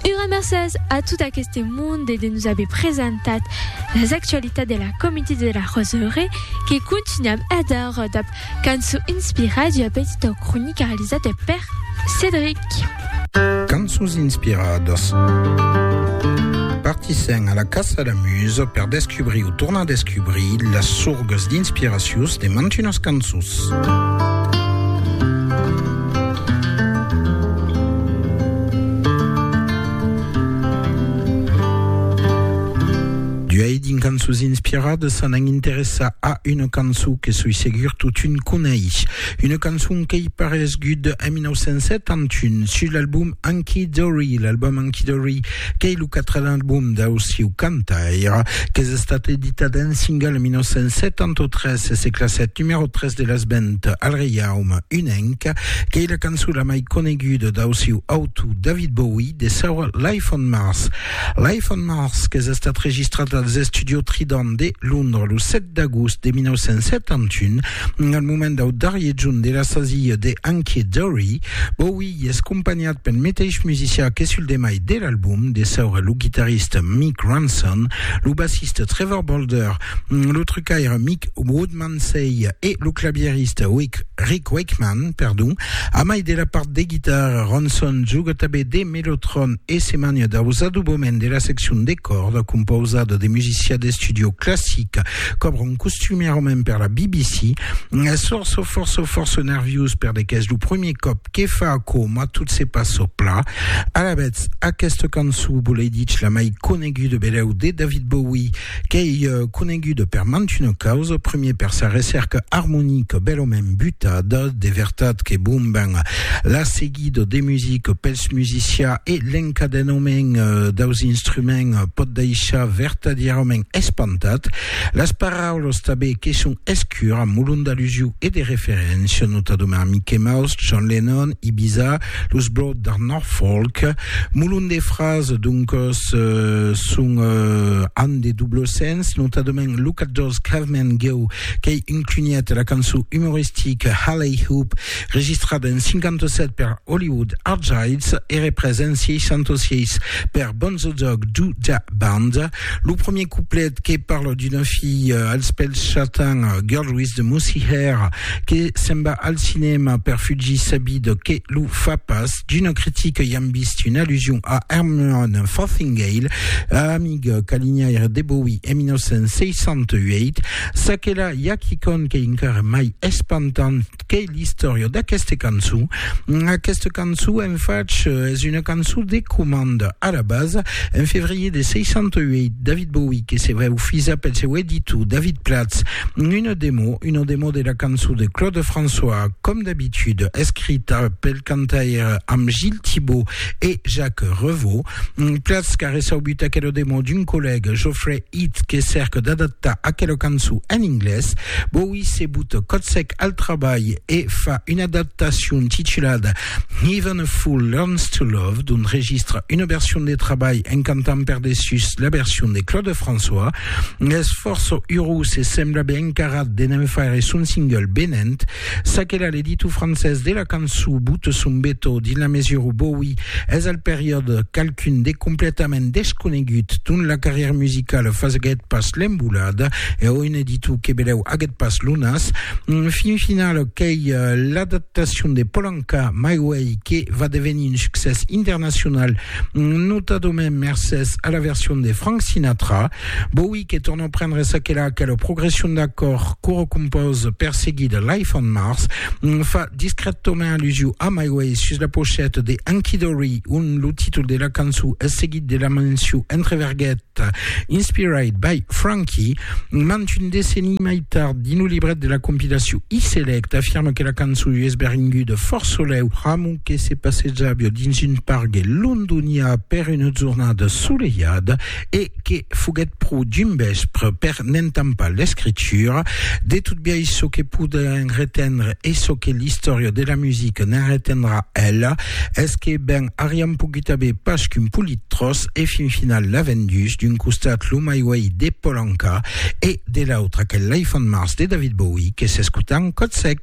Ura mercés a tot aqueste monde de nos aver presentat las actualitats de la Comité de la Roseraie que continuam adara dab cançó inspirada d'ua petita cronica realizada per Cédric. Cançons inspiradas. Partissèm a la caça a la musa per descubrir o tornar descubrir las sorgas d'inspiracions de mantunas cançons. D'uèi dins Cançons inspiradas se n'an interessar a una cançon que soi segur totun coneis. Una cançon qu'ei paresguda en 1971 sus l'album Hunky Dory, l'album Hunky Dory Qu'ei lo quatren album dau siu cantaire, qu'es estat editat en single en 1973 e se classèt numèro 3 de las ventes al Reiaume Unenc. Qu'ei la cançon la mai coneguda dau siu autor David Bowie de saur Life on Mars. Life on Mars qu'es estat registrat als Estudios Trident de Londres lo 7 d'agost de 1971, Al moment dau darrier jorn de la sasia de Ankie Dory, Bowie i es companhat pel meteis musicià que sul demai de l'album, de saura lo guitarrista Mick Ronson, lo bassista Trevor Bolder, lo trucaire Mick Woodmansey e lo clavierista Rick Wakeman, perdon. A mai de la part de guitarra, Ronson juga tanben de mellotron e se mania daus adobaments de la seccion de còrda, compausada de musicià d'estudio classic, Cobron costumièrament per la BBC, sorço forço forço nerviós per de qu'es lo premier còp que fa aquò mas tot se passa pla. Alavetz, aquesta cançó volei dich la mai coneguda belèu de David Bowie qu'ei coneguda per mant una causa, premier per sa recèrca armonica belament butada, de vertat que bon ben la seguiretz, guide de music pels musicians e l'encadenament daus instruments pòt daishar vertadièrament espantat. Las paraulas tanben que son escuras molon d'alusiu e de referéncia, notadament Mickey Mouse, John Lennon, Ibiza, los Blot d'Art Norfolk. Molon de frases doncas son an de doble sens, notadament Look at those cavemen go, qu'ei un clunièt de la cançon umoristica Halley Hoop, Registrat en 57 per Hollywood Archives e représ en 66 per Bonzo Dog Doo Dah Band, lo premier couplet que parla d'una filha als pèls chatans, Girl with the Moosey Hair, que se'n va al cinèma per fugir sa vida que lo fa pas, d'una critica i am vist una allusion a Herman Fothingale, amiga calinhaire de Bowie en 1968. Çaquelà i a quicòm qu'ei encara mai espantant, qu'ei l'istòria d'aqueste cançon. Aquesta cançon, en fach, es una cançon de comanda. A la basa, en febrier de 68, David Bowie que se veu fisa pel seu editor David Platz una demo, una demo de la cançon de Claude François, com d'habitud, escrita pel cantaire amb Gilles Thibaud e Jacques Revaux. Platz qu'a reçaubut aquela demo d'un collègue, Geoffrey Eth que cèrque d'adaptar aquela cançon en inglés, boí se bota còth sec al trabalh e fa una adaptacion titulada Even a Fool Learns to Love, d'ont registra una version de trabalh en cantant per dessús la version de Claude François. Es fòrça urós e sembla ben encarat de ne'n faire son single venent Ça que la l'editor francés de la cançon bote son beto dins la mesura où Bowie es al periòde qualqu'un de completament desconegut dont la carrière musicale faguèt pas l'embolada e o un editor que belèu aguèt pas lo nas, fin final qu'ei l'adaptacion de Polanka, My Way, que va devenir un succès internacional, notadament mercés a la version de Frank Sinatra. Bowie que torna prendre ça qu'elle a que la progression d'accord coro compose perseguit de Life on Mars fa discrètament allusion a My Way sus la pochette de Anki Dory on lo títol de la cançó es seguit de la menció entre verguet Inspired by Frankie mant un decenni mai tard dins lo libret de la compilació E-Select afirma que la cançó es beringuda fort soleu pramo que se passejava dins un pargue londonià per una jornada solejada e que foguèt pro dimbèspr per n'entampar l'escritura de tot biais çò que podèm retendre e çò que l'istòria de la musica ne'n retendrà ela es que ben ariam pogut aver pas qu'un polit tròç e fin final l'a vendús d'un costat lo My Way de Polanca e de l'autre aquel Life on Mars de David Bowie que s'escuta en còth sec.